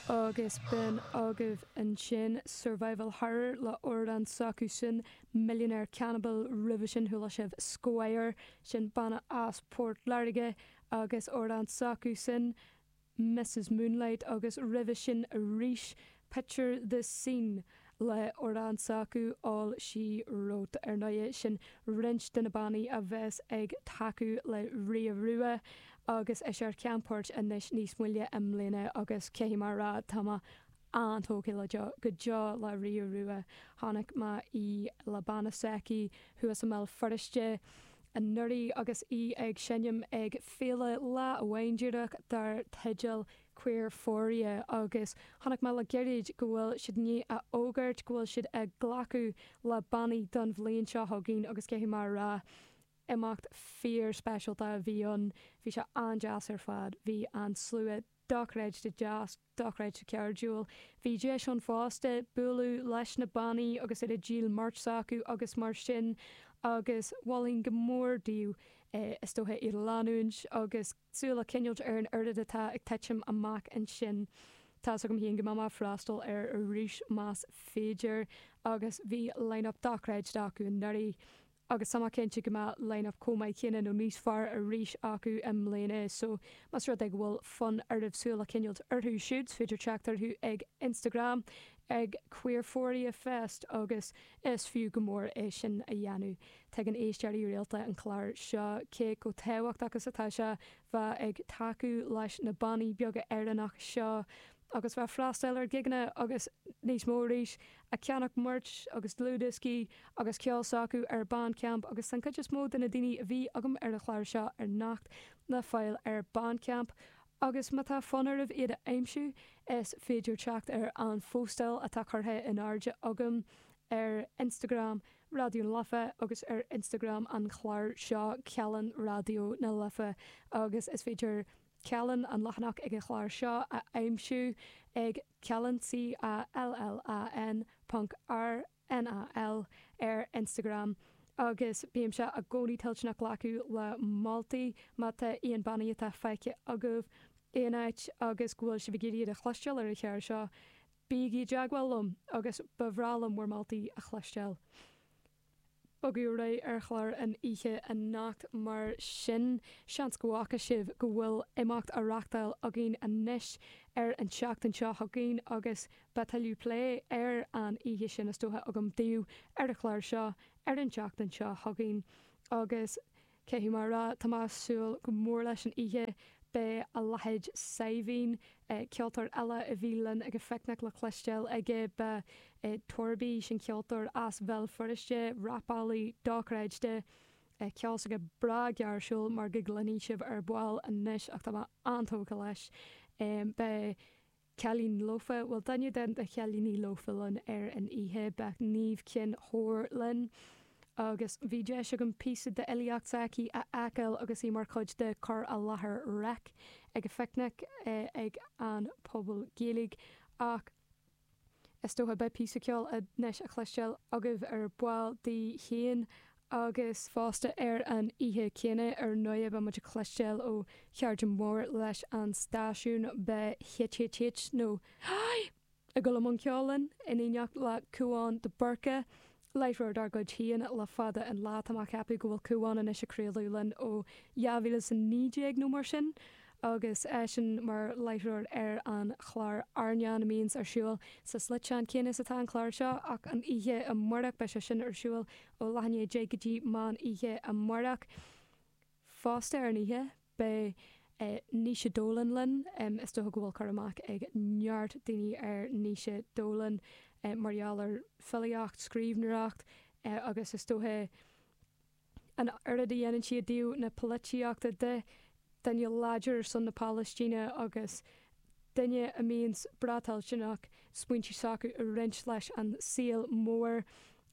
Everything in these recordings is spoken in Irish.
Agus b'in agaibh ansin survival horror le hamhrán s'acusan, Millionaire Cannibal, roimhe sin chuala sibh Squire, sin banna as Port Láirge, agus amhrán s'acusan, Mrs Moonlight, agus roimhe sin arís Picture the scene, le hamhrán s'acu, all she wrote, Ar ndóigh, sin roinnt de na bannaí a bheas ag tacú le Ria Rua agus í mar cheannpháirt anois níos moille i mbliana agus caithfidh mé a rá, tá mé an-tógtha le deo, go deo le Ria Rua. Chonaic mé í le banna s'aici thuas i mBéal Feirste anuraidh agus í ag seinm ag Féile lá amháin aerach dar teideal Queerphoria agus chonaic mé le gairid go bhfuil siad i ndiaidh a fhógairt go bhfuil siad ag glacadh le bannaí don bhliain seo chugainn agus caithfidh mé a rá, imeacht fíor-speisialta a bhí ann, bhí sé an-deas ar fad, bhí an slua dochreidte deas, dochreidte cairdiúil. Bhí deis ann fosta bualadh leis na bannaí agus iad ag díol merch s'acu agus mar sin agus mholfainn go mór daoibh, is dócha, iad a leanúint agus, súil a choinneáil ar an oiread atá ag titim amach ansin. Tá's agam féin go mbeidh mé ag freastal air arís más féidir, agus bhí line-up dochreidte acu anuraidh, agus tá mé cinnte go mbeidh line-up chomh maith céanna nó níos fearr arís acu i mbliana, so más rud é go bhfuil fonn oraibh súil a choinneáil orthu siúd, is féidir teacht orthu ag Instagram ag Queerphoria Fest agus Is fiú go mór é sin a dhéanamh. Tuigeann éisteoirí rialta an chlár seo cé chomh tábhachtach is atá sé bheith ag tacú leis na bannaí beaga Éireannacha seo agus bheith ag freastal ar ghigeanna agus níos mó arís, ag ceannach merch agus dlúthdhioscaí agus ceol s'acu ar Bandcamp agus tá an chuid is mó de na daoine a bhí agam ar an chlár seo anocht le fáil ar Bandcamp. Agus má tá fonn oraibh iad a aimsiú, is féidir teacht ar an phóstáil atá curtha in airde agam ar Instagram Raidió na Life agus ar Instagram an chláir seo, Callán Raidió na Life, agus is féidir Callán, an leathanach ag an chlár seo, a aimsiú ag Callán, C-A-L-L-A-N, ponc, R-I-A-D-I-O. NAL, ar Instagram agus bímse i gcónaí toilteanach glacadh le moltaí má tá aon bannaí atá feicthe agaibh aon áit agus go bhfuil sibh ag iarraidh iad a chloisteáil ar an chlár seo, bígí i dteagmháil liom agus ba bhreá liom bhur moltaí a chloisteáil. Ag bogadh ar aghaidh ar chlár an oíche anocht mar sin seans go bhfaca sibh go bhfuil imeacht á reachtáil againn anois ar an tseachtain seo chugainn agus Beidh tuilleadh plé ar an oíche sin is dócha agam daoibh ar an chlár seo ar an tseachtain seo chugainn agus, caithfidh mé a rá, tá mé ag súil go mór leis an oíche. Beidh a leithéid Saidhbhín, ceoltóir eile a bhí linn ag an Phicnic le cloisteáil aige, beidh Torby, sin ceoltóir as Bhéal Feirste, rapálaí dochreidte, ceol s'aige breá gairsiúil mar a gcluinfidh sibh ar ball anois ach tá mé an-tógtha leis, beidh. Cailín Lofa, Bhuel duine de na chailíní lofa linn ar an oíche beidh Niamh Chinn Óir linn agus bhí deis agam píosa d'fhilíocht s'aici a fheiceáil agus í mar chuid de cur i láthair Reic ag an Phicnic ag an Phuball Gaeilge ach is dócha beidh píosa ceoil anois le cloisteáil agaibh ar ball di féin agus fosta ar an oíche chéanna ar ndóigh beidh muid ag cloisteáil ó chairde móra leis an stáisiún, beidh HHH nó Haigh! ag dul i mbun ceoil linn, in éineacht le Cúán de Búrca, láithreoir dár gcuid féin le fada an lá, tá mé ag ceapadh go bhfuil Cúán anois ag craoladh linn ó 2019 nó mar sin, agus eisean mar láithreoir ar an chlár Airneán a mbíonns ar siúl sa sliotán céanna is atá an clár seo, ach an oíche amárach beidh sé sin ar siúl ó leath i ndiaidh a deich go dtí meán oíche amárach. Fosta ar an oíche beidh Naoise Dolan linn, is dócha go bhfuil cur amach ag neart daoine ar Naoise Dolan mar gheall ar filíocht, scríbhneoireacht agus is dócha, an oiread a dhéanann sí ó thaobh na polaitíochta de, duine láidir ar son na Palaistíne agus duine a mbíonns breá toilteanach smaointe s'aici a roinnt leis an saol mór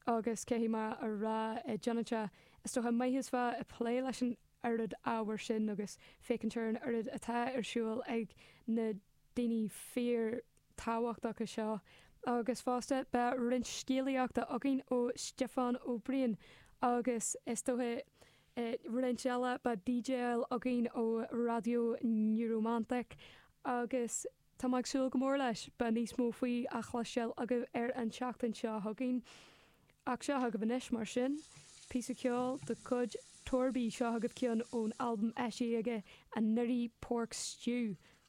agus caithfidh mé a rá, i gcónaí tá sé an-dóighiúil a bheith ag plé leis an oiread ábhair sin agus féachaint ar an oiread atá ar siúl ag na daoine fíor thábhachtacha seo, agus fosta beidh roinnt scéalaíochta againn ó Stiofán Ó Briain agus is dócha roinnt eile, beidh DJáil againn ó Raidió Neuromantic agus tá mé ag súil go mór leis, beidh níos mó faoi le cloisteáil agaibh ar an tseachtain seo chugainn. Ach seo agaibh anois, mar sin, píosa ceoil de chuid Torby, seo agaibh ceann ón albam eisithe aige anuraidh, Pork Stew,